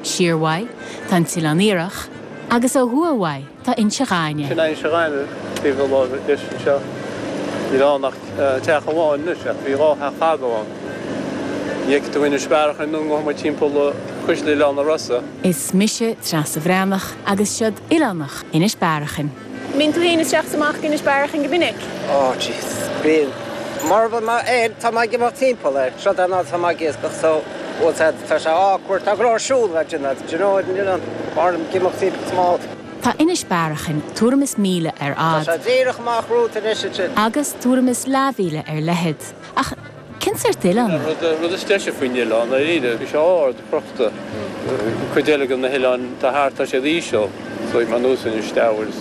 Siar uaidh tá an tOileán Iarthach agus ó thuaidh uaidh tá Inse Ghainimh. Sin é Inse Ghainimh taobh na láimhe deis anseo. Níl ann ach teach amháin anois ach bhí dhá theach fadó ann. Ní fheicfidh tú Inis Bearachain ar ndóigh amuigh timpeall cuisle Oileán na Rosa. Is mise Treasa Bhreathnach agus seod Oileánach Inis Bearachain. mbíonn tú féin isteach is amach ag Inis Bearachain go minic? Ó, jeez. Bíonn. Mura mbíonn mé air, tá mé ag imeacht timpeall air, seod an áit atá mé ag iascach so bhuel said tá sé awkward, tá go leor siúl le déanamh do you know what I mean, mar ag imeacht timpeall is mó. Tá Inis Bearachain tuairim is míle ar fhad. Tá sé díreach amach romhat anois ansin. agus tuairim is leathmhíle ar leithead, ach. Cén sórt oileán é? An rud is deise faoin oileán, dáiríre, bhí sé ard, crochta. Cuid eile den na hoileáin atá thart tá siad íseal, so bhí mé anuas ar an Steabhair is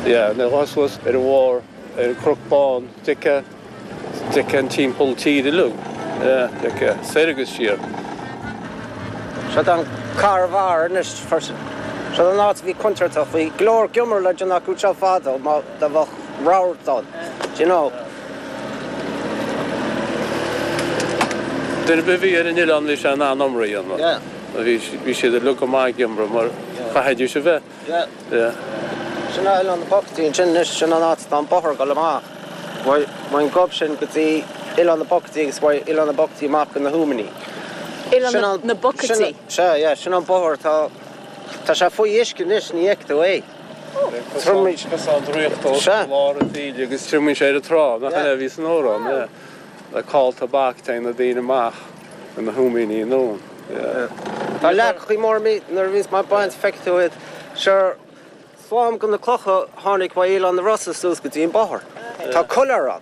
yeah, mé dhá suas ar an bharr ar an Chnoc Bán, d'fheicfeá, d'fheicfeá an timpeall tír uilig, yeah, d'fheicfeá, soir agus siar. Seod an Carr Bharr anois, seod an áit a bhí contúirteach, bhí go leor iomramh le déanamh acu seo fadó má, do bheadh radharc ann, do you know. Duine ar bith a bhí ar an oileán bhí sé in ann iomramh a dhéanamh. Bhí bhí siad uilig go maith ag iomramh mar chaithfidís a bheith. Sin é oileán na bPocataí ansin anois sin an áit atá an bóthar ag dul amach. Ón ngob sin go dtí oileán na bPocataí agus ó oileán na bPocataí amach go na hUaimní. Oileán na bPocataí? Sea, yeah, sin an bóthar atá, tá sé faoi uisce anois ní fheicfidh tú é. Triomaíonn. Cosán draíochta os ár lár a Mhíle agus triomaíonn sé ar an trá, nach 'in é a bhí san amhrán, le cáil tobac teagann na daoine amach ar na húimíní anonn. Tá leac faoi mbarr mí nuair a bhíos muid ag baint feicfidh tú iad. Sure, slám go na clocha tháinig ó Oileán na Rosa suas go dtí an bóthar. Tá caladh ar an.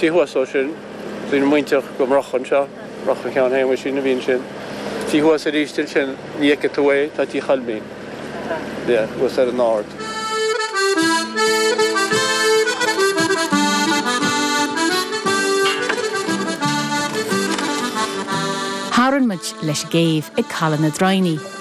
Taobh thuas ó sin, bhí na muintir go Murcha anseo, Murcha Sheáin Shéamaisín a bhí ansin. Taobh thuas aríst ansin, ní fheicfidh tú é, tá tí Choilmín, thuas ar an ard. Tharraing muid leis an gcéibh ag Caladh na Droighní.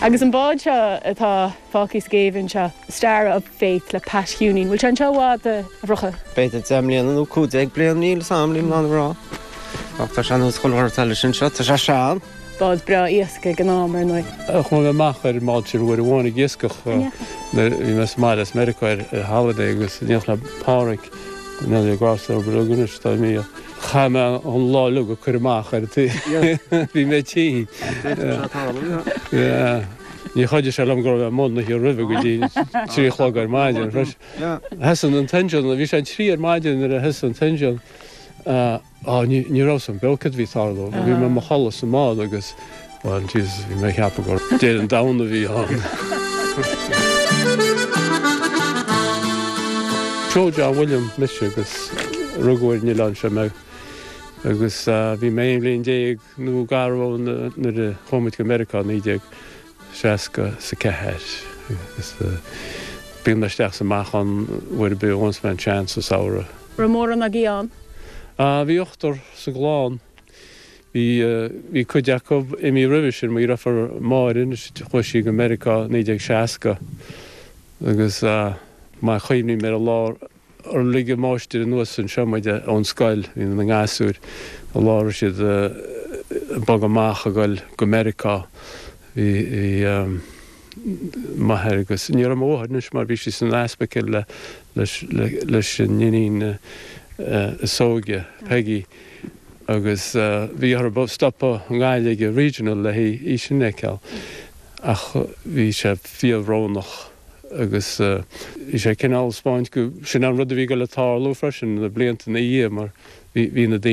Agus an bád seo atá fágtha sa gcéibh anseo, Star of Faith le Pat Hewny, an bhfuil sé anseo i bhfad, a Mhurcha? B'fhéidir deich mbliana nó cúig déag bliain, níl 'fhios a'm, nílim in ann a rá. Ach tá sé anuas chomh hard leis anseo, tá sé sean. Bád breá iascaigh ag an am, ar ndóigh. Chuaigh mé amach ar an mbád sin uair amháin ag iascach. Bhí mé sa mbaile as Meiriceá ar holiday agus bhíodh le Páraic, an fhear a bhí ag gabháil sa Obair Mhic Cionnaith, is dóigh, a mbíodh. Chaith mé an lá uilig ag cur amach uirthi. Bhí mé tinn. Níor chuidigh sé liom go raibh mé amuigh an oíche roimhe go dtí trí a chlog ar maidin. Thosaigh an t-engine, bhí sé an trí ar maidin nuair a thosaigh an t-engine. Á, ní raibh 'fhios a'm beo céard a bhí ag tarlú. Bhí mé i mo chodladh sa mbád agus. Bhuel Jesus, bhí mé ag ceapadh gur Deireadh an Domhain a bhí ann. Seo John William mise agus rugadh ar an oileán seo mé agus bhí mé 11 bhliain nó gar go maith dhó nuair a chuaigh muid go Meiriceá in 1964 agus bíonn mé isteach is amach ann uair ar bith a mbíonns an chance sa samhradh. Raibh mórán agaí ann? Bhí ochtar sa gclann. Bhí cuid acu imí roimhe sin, mo dheirfiur Máire anois chuaigh sí go Meiriceá 1960 agus maith a chuimhním ar an lá ar lig an máistir anuas anseo muid ón scoil, inár ngasúir, an lá a raibh siad ag bogadh amach ag dul go Meiriceá, bhí. m'athair agus ní raibh mo mháthair anois mar bhí sí san ospaicil leis an iníon is óige, Peggy, agus bhí orthu stopadh i nGaillimh i Regional le hí sin a phiocadh ach bhí sé fíorbhrónach agus bhí sé cineál ag spáint gur sin an rud a bhí ag goil a tarlú freisin sna blianta ina dhiaidh mar bhí na.